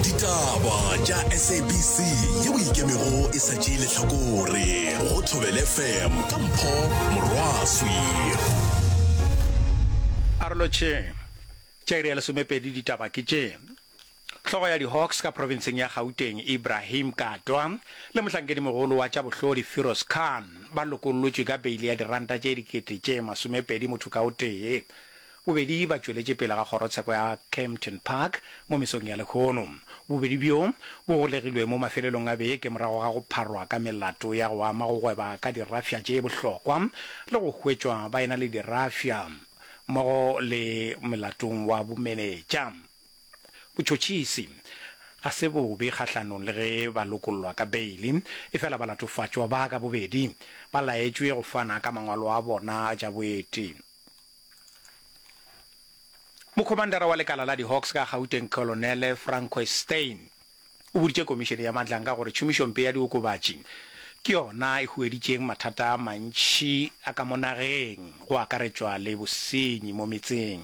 ditaba tša sabc yeo e ikemego e sa tšee lehlakore go thobele fm ka mpho morwaswi arolo tše tša iri ya lesomepedi ditaba ke tše hlogo ya di-hawks ka provinseng ya gauteng ibrahim katwa le mohlankedimogolo wa tša bohlodi firos khan ba lokollotšwe ka beile ya diranta tše dikete tše masomepedi motho ka o tee Bobedi ba tšweletše pele ga kgorotsheko ya Kempton Park mo mesong ya lehono. Bobedi bjo bo golegilwe mo mafelelong a beke morago ga go pharwa ka melato ya go ama go gweba ka dirafša tše bohlokwa le go hwetšwa ba ena le dirafša mmogo le molatong wa bomenetša. Botšhotšhisi ga se bobe kgahlanong le ge ba lokollwa ka beile, efela balatofatšwa ba ka bobedi ba laetšwe go fana ka mangwalo a bona a tša boeti. Mokhomandara wa lekala la di-Hawks ka Gauteng Kolonele Francois Steyn o boditše komišene ya Madlanga gore tšhomišompe ya diokobatši ke yona e hueditšeng mathata a mantši a ka mo nageng go akaretšwa le bosenyi mo metseng.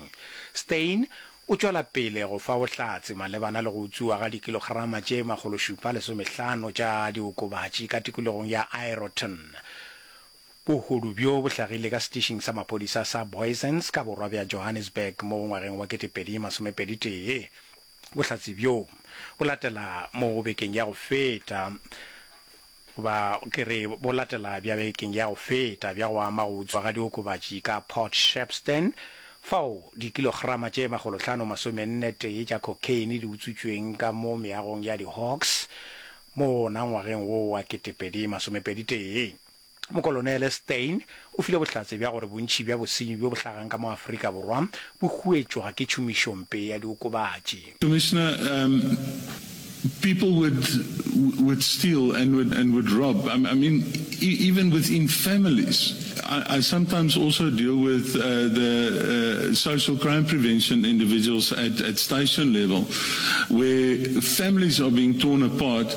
Steyn o tšwela pele go fa bohlatse malebana le go utswiwa ga dikilograma tše makgološupa lesomehlano tša diokobatši ka tikologong ya Aeroton Bohodu bjo bo hlagile ka setišing sa maphodisa sa Booysens ka borwa bja Johannesburg mo ngwageng wa ketepedi masomepedi tee. Bohlatse bjo bo latela mo bekeng ya go feta ba ke re bo latela bja bekeng ya go feta bja go ama go utswa ga diokobatši ka Port Shepstone fao dikilograma tše makgolohlano masomenne tee tša cocaine di utswitšweng ka mo meagong ya di Hawks mo wona ngwageng wo wa ketepedi masomepedi tee. Mokolonele Steyn o file bohlatse bja gore bontši bja bosenyi bjo bo hlagang ka mo Afrika Borwa bo huetšwa ke tšhomišompe ya diokobatši. Commissioner, um, people would, would steal and would, and would rob. I, I mean, e, even within families. I, I sometimes also deal with uh, the uh, social crime prevention individuals at, at station level, where families are being torn apart